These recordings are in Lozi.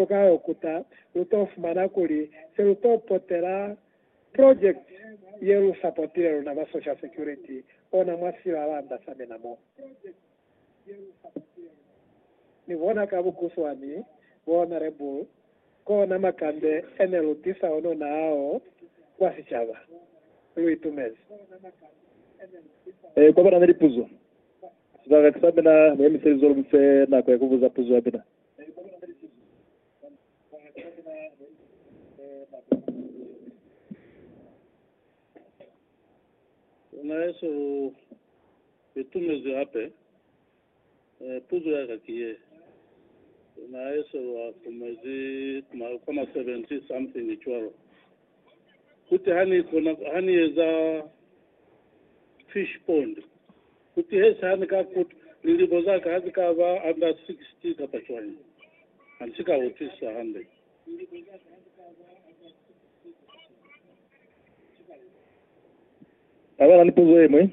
lu ka yo kuta, lu to fumana kuli se lu to potela project ye lu sapotile luna ba Social Security ona mwa silalanda sa mina mo. Ni bona ka bukuswani, Bo Honorable, kona makande e ne lu tisa onona ao kwa sicaba. Lu itumezi. Kwa ba na ni lipuzo, sibaka sa mina ni emiselize lu mi fe nako ya ku buza puzo ya mina. Na Yesu u itumezwi hape. Puzo ya ka ki ye, Na Yesu u akumezi kwa ma 70 something cwalo. Kuti ha ni kona, ha ni eza fish pond, Ku tihesa ha ni ka kutwa, lilimo za ka ha zi ka ba under 60 kapa cwañi, ha ni si ka utwisisa hande. Ha ba na ni puzo ye ñwi.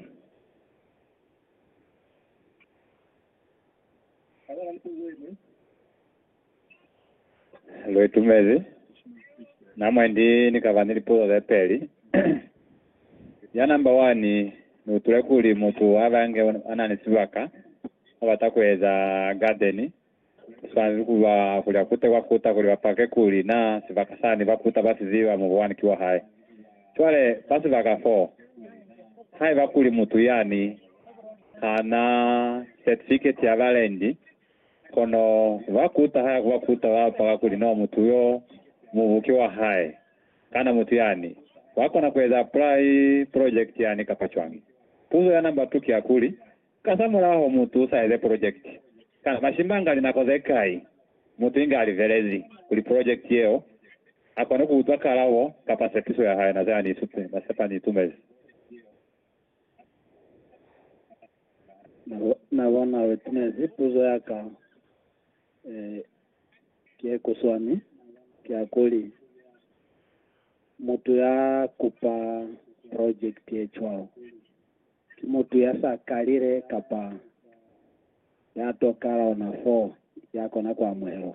Lu itumezi na mwendi ni ka ba ni lipuzo ze peli. Ya namba wani, Ni utule kuli mutu ha bange a na ni sibaka a bata ku eza gadeni, ku swanezi ku ba kuli a kute kwa kuta kuli ba pake kuli na sibaka sani ba kuta ba si ziba mubu wani ki wa hae. Cwale fa sibaka fo, haiba kuli mutu yani ha na setifiketi ya balendi, Kono bakuta ha ya ku bakuta ba paka kuli no mutu yo mubu ki wa hae. Kana mutu yani wa kona ku eza apply project yani kapa cwañi? Puzo ya number two ki ya kuli, Kasamulaho mutu sa eze project, kana mashimbanga linako ze kai mutu inge a livelezi kuli project yeo a kone ku utwa kalabo kapa sepiso ya hae na ze a ni sepa ni itumezi? Na bona witness puzo ya ka eh, ki ye kuswani ki ya kuli mutu ya kupa project ye cwalo ki mutu ya sa kalile kapa ya to kala ona fo ya kona ku amuhelwa.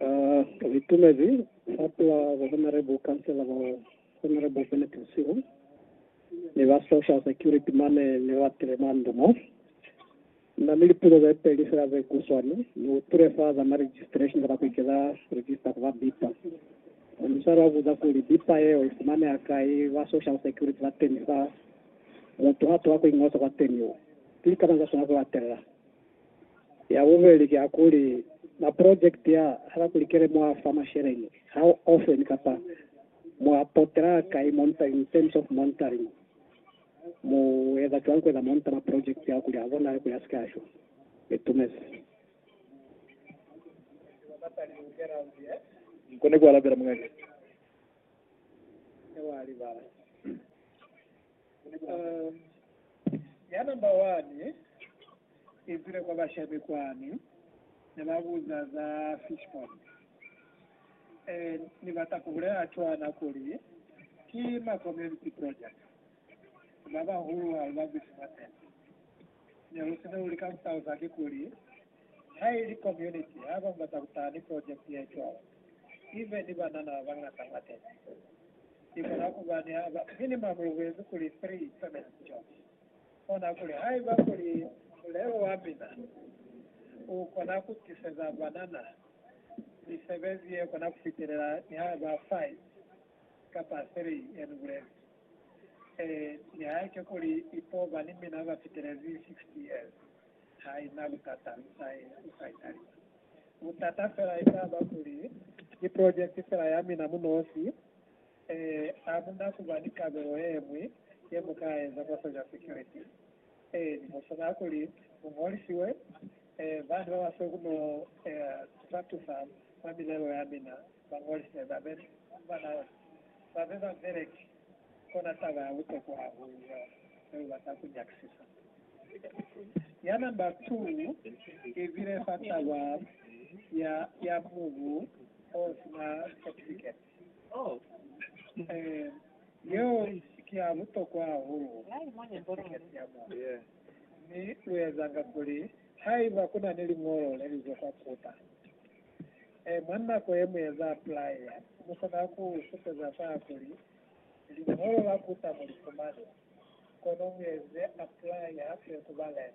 Ba itumezi hape ba Honorable Councillor ba Honorable Bennett Msiu ni ba Social Security mane ne ba tile mwa ndu mo. Na ni lipuzo ze peli fela ze kuswani, ni utwile fa za ma registration kapa ku ikeza register ku ba bipa. Mwa musali wa buza kuli bipa yeo i fumaneha kai, ba Social Security ba teni fa mutu ha toha ku ingosa kwateni. Ki lika mañi za swanela ku latelela? Ya bubeli ki ya kuli, maprojekiti a, haba kuli kele mo a fa masheleñi, how often kapa mo a potela kai monitoring, in terms of monitoring, mu eza cwani kueza monitor maprojekiti ao kuli a bonale kuli a sike a shwa. Ni tumezi. Nkone ku alabela mung'anga. Yebo, a libala. Uh, ya number one. Izile kwa bashape kwani, ne ba buza za fish pond. Ee, Ni bata ku bulela cwana kuli ki ma community project. Ba bahulu ha lu babusi mwa tente. Ne lu sina lu lika ku talusa ki kuli, Ha ili community ha ba bata ku taha ni project ye cwalo, ibe ni banana ba bañata mwa tente. Ni kona kuba ni ha ba, minimum lu buezi kuli three permanent jobs. Kona kuli haiba kuli mulelo wa mina u kona ku tiseza banana misebezi ye kona ku fitelela nihaiba 5 kapa 3, yani bulezi ee, nihaike kuli ipo ba ni mina ba fitelezi 60 years, ha i na butata, lu sa i, lu sa i talisa. Butata fela e ka ba kuli ki project fela ya mina mu nosi. Ee, hamuna kuba ni kabelo yeñwi yemukaeza kwa Social Security. Ee, ni musuna kuli muñolisiwe. Ee, bani babasweu kuno ee, tatusa mwa milelo yamina bañolise babe banao, babe babeleki. Kona taba ya butokwa hahulu yeo nebebata kunyakisisa. Ya namba tu ibile fa taba ya, ya mubu osina certificate. Yeo i ki ya butokwa hahulu mwa sikete ya moya. Mi lu ezanga kuli haiba ku na ni liñolo le li zwa kwa Kuta, mwa nako ye mu eza aplaya, mu kona ku supeza fa kuli liñolo la Kuta mu li fumani, kono mu eze aplaya hape ku ba lent.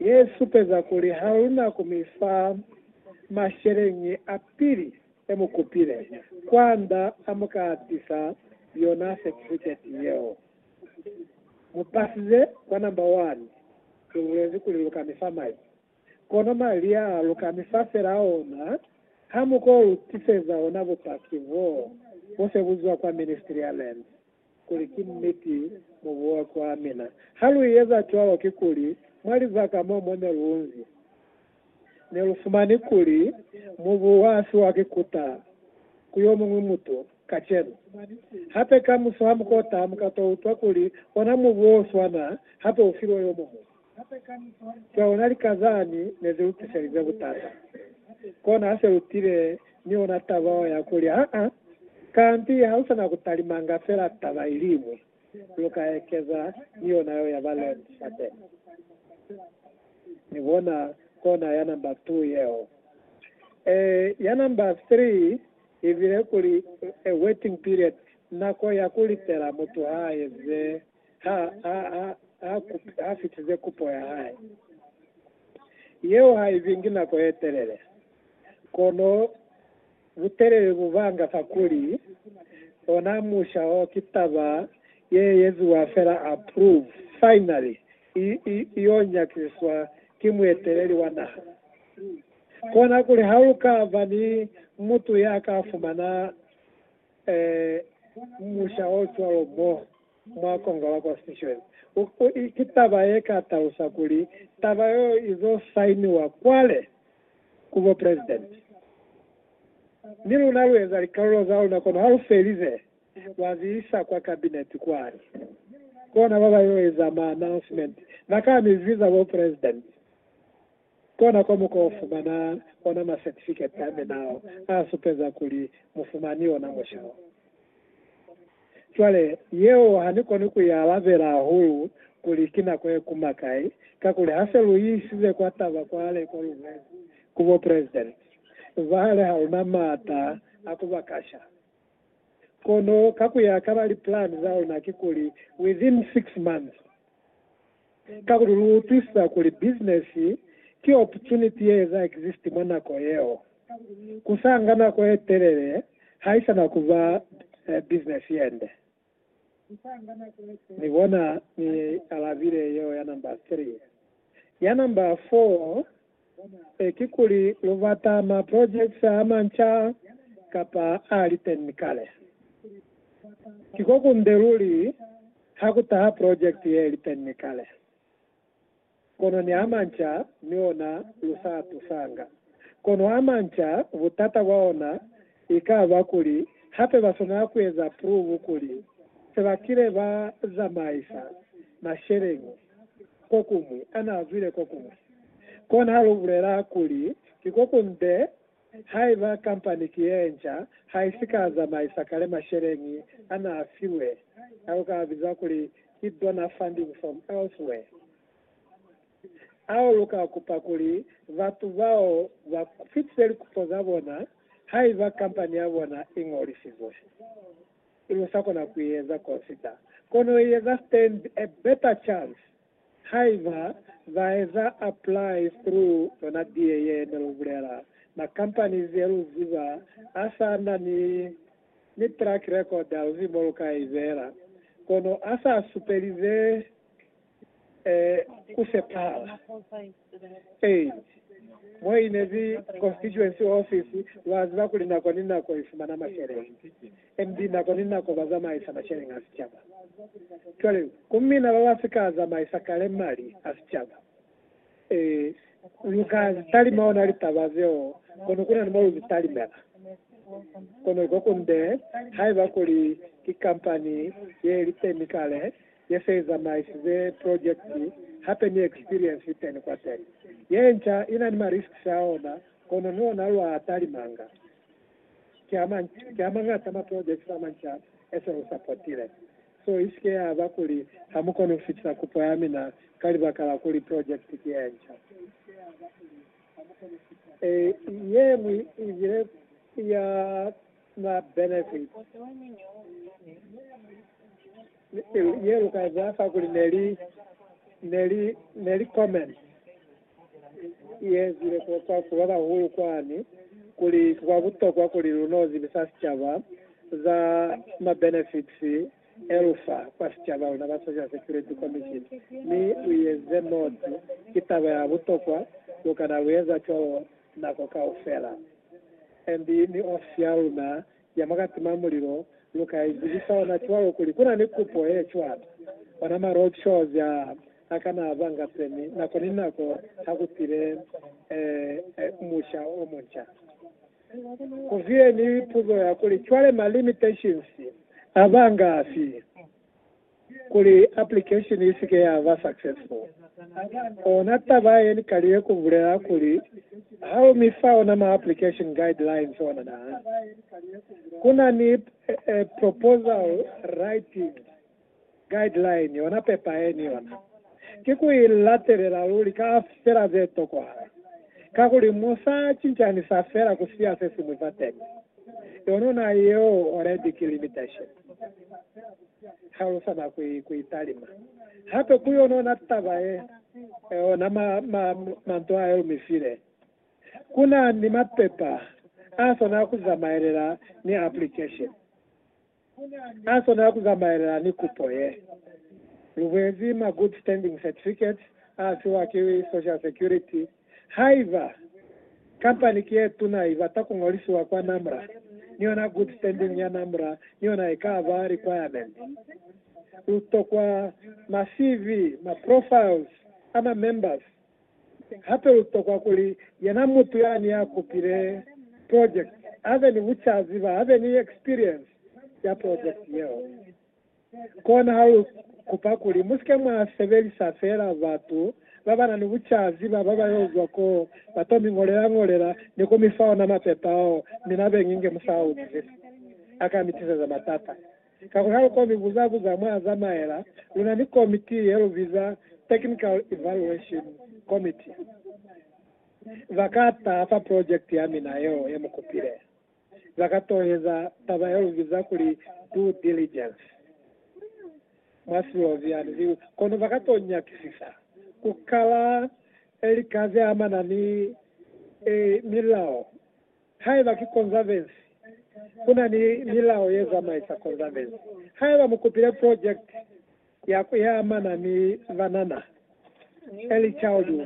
Ye supeza kuli ha lu na ku mi fa masheleñi a pili e mu kupile, kwand'a a mu ka tisa yona setifiketi yeo. Mu pasize kwa namba wani. Lu bulezi kuli lu ka mi fa mali. Kono mali a lu ka mi fa fela ona ha mu ko lu tiseza ona bupaki boo bo se bu zwa kwa Ministry ya Lands. kuli ki niti mu buwa kwa mina. Ha lu eza cwalo, kikuli mwa lizaka mo mwa ne lu nzi, ne lu fumani kuli mu buwa a fiwa ki kuta ku yo muñwi mutu kacenu. Hape kamuso ha mu kota, mu ka to utwa kuli ona mubuwa o swana hape u filwe yo muñwi. Ka ona lika zani ne zi lu tiselize butata. Kona ha se lu tile ni ona taba ya kuli, Haa, kanti ha lu sa na ku talimanga fela taba iliñwi, lu ka ekeza ni yona yeo ya ba Led Zeppelin. Mi bona kona ya namba two yeo. Ee, ya namba three i bile kuli, A Waiting Period, Nako ya ku Litela Mutu ha Eze. ha a fitize kupo ya hae. Yeo ha i zingi nako ye telele, kono butelele bu banga fakuli ona musha o ki taba ye eziwa fela approve, finally, i yo nyakisiswa ki mueteleli wa naha. Konakuli ha lu ka ba ni mutu ya ka fumana Ee, musha o cwalo mo mwa Kongo la Constitution u, u, ki taba ye ka talusa kuli taba yeo izo sainiwa kwale ku bo president. Ni luna lu eza likalulo za luna, kono ha lu felize, lwa zi isa kwa cabinet kwani. Kona ba ba yo eza ma announcement, ba ka mi viza bo president. Kona kwa mu ka fumana ona masertifiketi a minao a supeza kuli mu fumani ona mushao. Cwale, yeo ha ni koni ku i alabela hahulu kuli ki nako ye kuma kai, kakuli ha se lu isize kwa taba kwale ko lu lwezi ku bo president, nzwa hali ha lu na maata a ku ba kasha. Kono ka ku ya ka ba lipulani za luna kikuli within six months, Kakuli lu utwisisa kuli business ki opportunity ye eza exist mwa nako yeo. Ku sa nga nako ye telele haisana ku ba business yende. Ni bona ni alabile yeo ya number three. Ya number four. Ee, kikuli lubata ma projects amanca kapa aaliteñi kale? Kiko kunde luli hakutaha project yeeliteñi kale, kono ni amanca mi ona lusaatusanga. Kono amanca butata bwaona ikaba kuli hape baswanela kueza prove kuli sebakile bazamaisa masheleñi. kokuñwi, ana zwile kokuñwi. Kona lu bulela kuli ki kokunde haiba kampani ki yenca haisi ka zamaisa kale masheleñi ana filwe, ao ka biza kuli ki donor funding from elsewhere, ao lu ka kupa kuli batu bao ba fitise likupo za bona haiba kampani ya bona i ñolisizwe. Ili usakona kuieza consider kono ieza stand a better chance haiba baeza apply through lona die ye nelubulela ma companies yeluziba asana ni ni track record hauzi moluka ibela kono asa supeli ze ku sepahala. Ee, mo i ne li constituency office, lwa ziba kuli nako ni nako i fumana masheleñi, NB, nako ni nako ba zamaisa masheleñi a sicaba. Cwale, ku mina ba ba si ka zamaisa kale mali a sicaba. Ee, lu ka zi talima ona litaba zeo, kono ku na ni mo lu zi talimela. Kono ko kunde, haiba kuli ki kampani ye li teni kale, ye se i zamaisize projekiti hape ni ekspiriensi iteni kwateni. Ye nca i na ni ma risks a ona, kono ni ona lwa talimanga. Ki a manci, ki a mañata ma projekiti a manca e se lu sapotile. So i si ke ya ba kuli ha mu koni ku fitisa kupo ya mina ka libaka la kuli projekiti ki ye nca. Ye ñwi i bile ya. ba benefit ye lu ka za fa kuli ne li ne li ne li comment ye zile kwa kwa ku ba bahulu kwani kuli kwa butokwa kuli lu no zibisa sicaba za ma benefits e lu fa kwa sicaba luna ba social security commission mi u yeze moti ki taba ya butokwa lu kana lu eza cwalo nako kaufela. And ni ofisi ya luna ya mwa katima mulilo lu ka i zibisa ona cwalo kuli ku na ni kupo ye cwata. Ona ma road shows a a kana a banga semi nako ni nako ha ku pile musha o munca. Ku vile ni puzo ya kuli, Cwale ma limitations a banga afi? kuli application i si ke ya ba successful. Ona taba ye ni kalile ku bulela kuli ha u mi fa ona ma application guidelines ona na ku na ni proposal writing guideline ona pepa ye ni ona ki ku i latelela luli ka fela ze tokohala kakuli mo sa cincani sa fela ku siya se siñwi fateni. Yonona yeo already ki limitation. talusa na ku, ku italima hape ku yona, ona taba ye, ona ma, ma, manto ayo lu mi file. Ku na ni mapepa a swana ku zamaelela ni application, a swana ku zamaelela ni kupo ye. Lu buezi ma good standing certificates a fiwa ki Social Security. Haiba kampani ki ye tuna i bata ku ñolisiwa kwa NAMRA, ni yona Good Standing ya NAMRA ni yona i ka ba requirement. Lu tokwa ma-CV, ma-profiles, a ma-members. Hape lu tokwa kuli yena mutu yani ya kupile project a be ni bucazi ba be ni experience ya project yeo. Kona ha lu kupa kuli mu si ke mwa sebelisa feela batu ba ba na ni bucazi ba ba ba yo zwa ko ba to mi ṅolela-ṅolela ni ku mi fa ona mapepa ao mi na beñi nge mu sa a utwisisi, a ka mi tiseza matata. Kakuli ha lu ko mi buza-buza mwa a zamaela, lu na ni komiti ye lu biza Technical Evaluation Committee. Ba ka taha fa project ya mina yeo ye mu kupile. za ka toheza taba ya lu biza kuli due diligence mwa Slovenian, ki kono ba ka to nyakisisa ku kala lika ze amana ni milao. Haiba ki Konzavensi, ku na ni milao ye zamaisa Konzavensi. Haiba mu kupile project ya ku ye amana ni banana, early childhood,